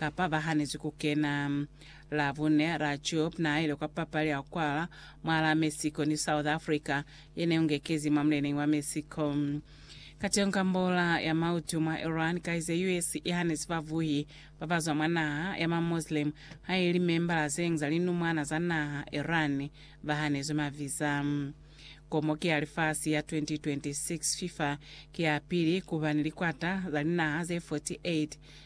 kapa ba hanezwi ku kena. La bune, Rajoub na ile kwa papali ya kwala mwa la Mexico ni South Africa ye ne ungekezi mwa muleneñi wa Mexico. Kateñi ka mbola ya mautu mwa Iran, kaize US i hanezi bavuhi ba ba zwa mwa naha ya ma Muslim ha ili membala zeñwi za linumwana za naha Iran ba hanezwi ma visa. Komo ki ya lifasi ya 2026, FIFA ki ya pili kuba ni likwata za linaha ze 48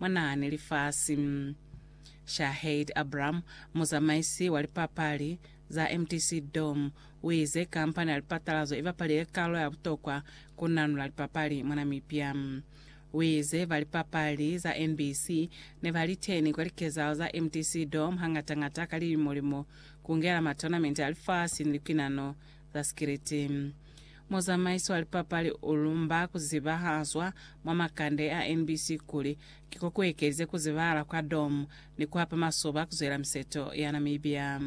Mwanahane lifasi. Shaheed Abram, muzamaisi wa lipapali za mtc Dome, uize kampani ya lipatalazo ibapalile kalo ya butokwa ku nanula lipapali mwa Namibia. Uize ba lipapali za NBC nebaliteni kwa likezahalo za mtc Dome hangata-ngata ka lilimo-limo, kungela matonamente a lifasi ni lipinano za sikiliti. Muzamaiso wa lipapali u lumba ku zibahazwa mwa makande a NBC kuli, Ki ko ku ekeze ku zibahala kwa dom ni ku hapa masoba ku zwela miseto ya Namibia.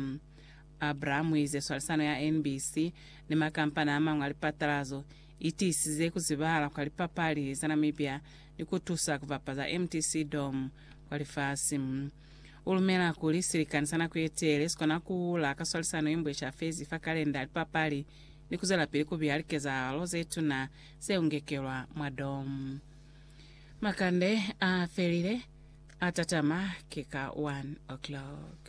Abraham u ize swalisano ya NBC ni makampani a mañwi a lipatalazo i tiisize ku zibahala kwa lipapali za Namibia ni ku tusa ku bapaza mtc dom kwa lifasi. U lumela kuli silikani sa nako ye teele si kona ku hula ka swalisano ye nbwe ca fezi fa kalenda, lipapali, ni ku zwelapili ku biha likezahalo ze tuna ze u ngekelwa mwa dom. Makande a felile, a tatama ki ka 1 o'clock.